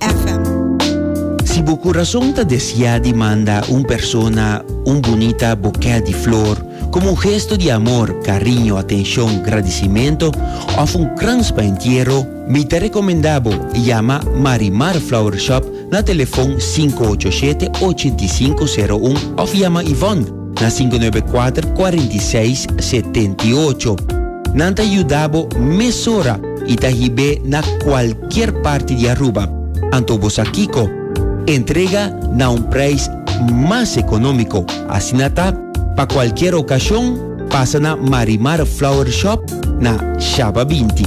FM. Si bo kurason ta desiá di manda un persona un bunita bokè di flor komo un gesto di amor, kariño, atenshon, gradisimentu òf un krans pa entiero, mi ta rekomendá bo yama Marimar Flower Shop na telefòn sinku ocho shete, ochenta i sinku, seru un òf yama Yvonne, na sinku nuebe kuater kuarenta i seis setenta i ocho. Nan ta yuda bo mesora i ta hib'é na kualkier parti di Aruba. Anto bo sa kiko? Entrega na un preis mas ekonómiko. Asina ta, pa kualkier okashon, pasa na Marimar Flower Shop na Shaba binti.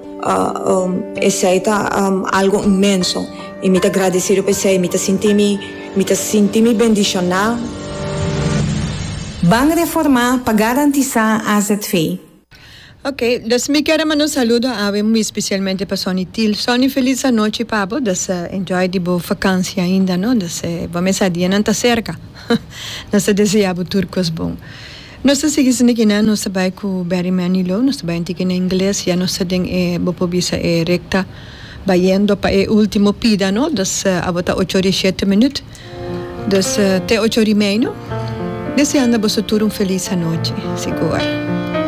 Esei ta algo inmenso i mi ta gradesido pa esei. Mi ta sinti mi, mi ta sinti mi bendishoná. Ban reformá pa garantisá azv. Ok, dus mi kier a manda un saludo awe muy especialmente pa Sonny Til. Sonny feliz anochi pa bo, dus enjoy di bo vakansia ainda no, dus bo mesa dianan ta cerca. Nos ta desea bo tur cos bon. Nos ta sigui sinda kinan nos ta bai ku Barry Manilow nos ta bai antiken na ingles ya nos ta den e bo por bisa e rekta bayendo pa e ultimo pida no dus abo ta ocho ori e shete minut dus te ocho ori meino deseando a boso tur un felis anochi si goa.